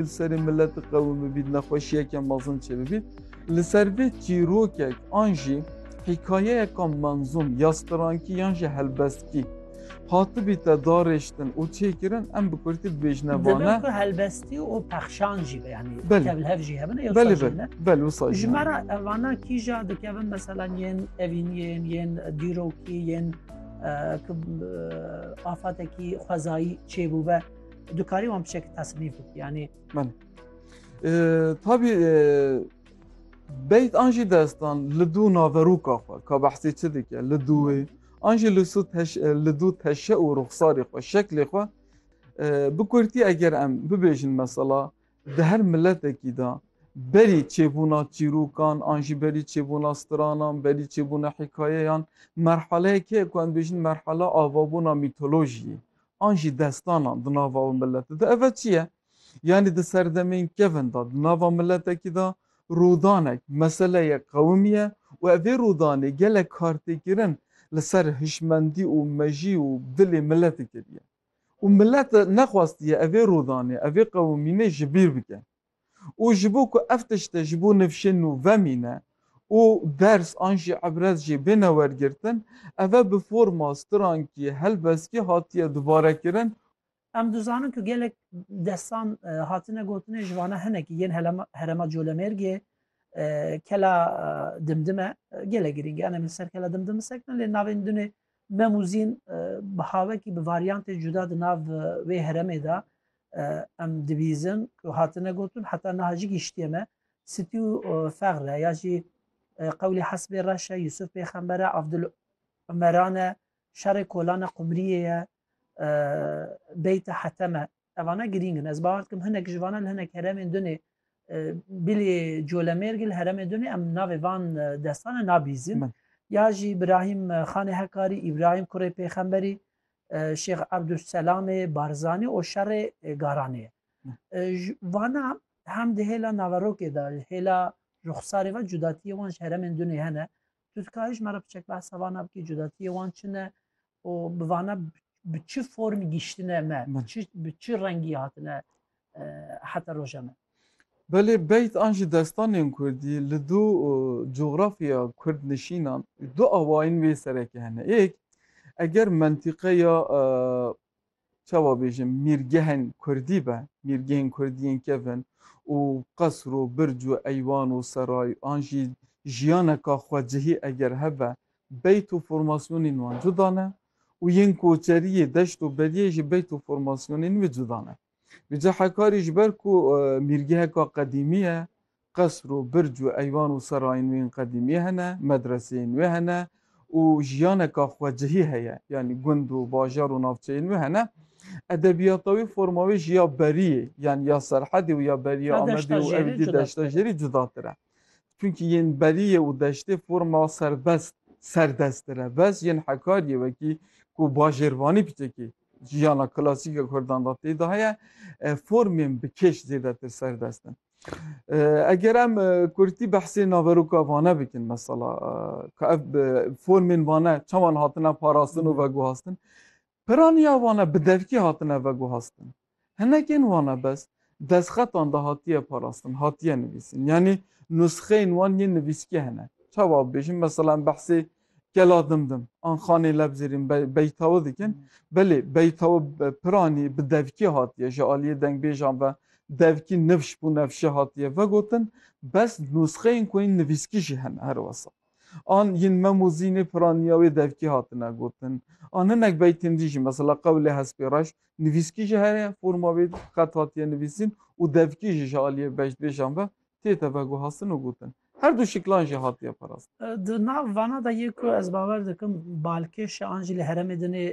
Li serê milet û qewim bibît, nexweşiyeke mezin çêbibît. Li ser vê çîrokek an jî hîkayeyeka menzûm ya strankî yan jî helbestkî hatibîte darêştin û çêkirin em bi kurtî bibêjine vane. Divê ku helbestî û pexşan jî be yanî tev hev jî hebin ê Belê be, bel wisa jî. Ji me re evana kîja dikevin mesela yên evîniyên yên dîrokî yên ki afatekî xwezayî çêbûbe. Dikarî wan bi şekî tasnîf bikî yanî. Belê. Tabî beyt an jî destan li dû naverûka xwe ka behsê çi dike li dûwê an jî li sû li dû teşe û ruxsarê xwe şeklê xwe bi kurtî eger em bibêjin mesela di her miletekî da berî çêbûna çîrûkan an jî berî çêbûna stranan berî çêbûna hikayeyan merhaleyekê ku em bêjin merhala avabûna mîtolojiyê an jî destanan di nava wê miletê de eve çi ye? Yanî di serdemên kevin de di nava miletekî de rûdanek meseleyek qewimî ye û evê rûdanê gelek kartêkirin li ser hişmendî û mejî û dilê miletê kiriye û milet nexwastiye evê rûdanê, evê qewimînê ji bîr bike. û ji bo ku ev tişte ji bo nivşên nû vemîne û ders an jî îbret jê bêne wergirtin, ev e bi forma strankî, helbestkî hatiye dubarekirin. Em dizanin ku gelek destan hatine gotinê ji vana hinekî yên herema Colemêrgê Kela Dimdim e. Gelek girîng e. Em ê li ser Kela Dimdim bisekinin lê navên din ê Mem û Zîn bi havekî bi varyantê cuda di nav wê heremê de em dibîzin ku hatine gotin heta niha jî gihiştiye me sitî û fexre ya jî qewlê hesbê reş e Yusuf pêxember e Avdul Umeran e şerê kolan e qumriyê ye beyte hetem e evana girîng in ez bawer dikim hinek ji vanan li hinek heremên dunê bilê colemêrgê li heremê dunê em navê van destan e nabîzin ya jî Îbrahîm xanê hekarî Îbrahîm kurê pêxemberî Şêx Ebdulselamê Barzanî û şerê Garanê ye. Ji vana hem di hêla naverokê de ji hêla ruxsarê ve cudatiyê wan ji heremên dunê hene. Tu dikarî ji me re biçek behsa vana bikî cudatiyê wan çi ne û bi vana bi çi form giştine me, bi çi rengî hatine heta roja me. Belê beyt an jî destanên kurdî li du cografya kurdnişînan du awayên wê sereke hene. Yek, eger mentîqeya çawa bêjim mîrgehên kurdî be, mîrgehên kurdî yên kevin û qesr û birc û eywan û seray an jî jiyaneka xwecihî eger hebe, beyt û formasyonên wan cuda ne û yên koçeriyê, deşt û beriyê jî beyt û formasyonên wê cuda ne. Bi cehekarî ji ber ku mîrgeheka qedîmî ye, qesr û birc û eywan û serayên wê yên qedîmî hene, medreseyên wê hene û jiyaneka xwecihî heye, yanî gund û bajar û navçeyên wê hene. Edebiyata wê, forma wê ji ya Beriyê, yanî ya Serhedê û ya Beriyê Ya Amedê û Deştajêrê Ewdî cuda tira. Deştajêrî cuda tira. Çunkî yên Beriyê û Deştê forma serbest, serdest tira. Bes yên Hekariyê wekî ku bajêrvanî piçekî Jiyana klasîk a Kurdan de tê de heye, formên bi kêş zêdetir serdest in. Eger em kurtî behsê naveroka vane bikin mesela ka ev formên vane çawan hatine parastin û veguhastin. Piraniya vane bi devkî hatine veguhastin. Hinekên wana bes destxetan de hatiye parastin, hatiye nivîsin. Yanî nusxeyên wan yên nivîskî hene. Çawa bibêjim, mesela em behsê Kela Dimdim an Xanê Lebzêrîn Beytawi dikin, belê Beytawi bi piranî, bi devkî hatiye, ji aliyê dengbêjan ve devkî nifş bû nefşê hatiye vegotin, bes nusxeyên ku yên nivîskî jî hene herwesa. An yên mem û zînê piraniya wê devkî hatine gotin. An hinek beytên dî jî mesela qewlê Hespê Reş nivîskî ji herê forma wê xet hatiye nivîsîn û devkî jî ji aliyê beştbêjan ve tête veguhastin û gotin. Her du şiklan jî hatiye parastin. Di nav vana de yê ku ez bawer dikim balkêş e an jî li heremê din ê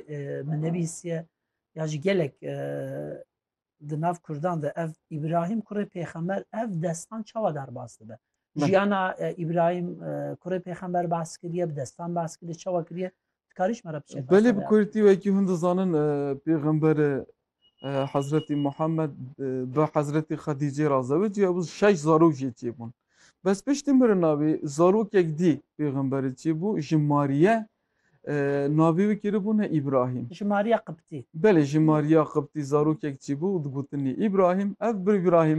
min nevîsiye ya ji gelek Di nav Kurdan de ev İbrahim kurê pêxemer ev destan çawa derbas dibe? Jiyana e, İbrahim e, kurê pêxemer bas kiriye, bi destan bas kiriye, çawa kiriye? Dikarîş me re biçe Belê felsefe bi ya. Kurdî wekî hûn dizanin e, pêxembere e, Hezretî Muhammed e, bi Hezretî Xedîcê ra zewicî hebû şeş zarok jê çêbûn. Bes piştî mirina wî zarokek dî pêxemberê çêbû ji Mariye Navê wî kî bû ne Îbrahîm? Ji mariya qibtî. Belê ji mariya qibtî zarokek çî bû û digotinî Îbrahîm. Ev bir Îbrahîm.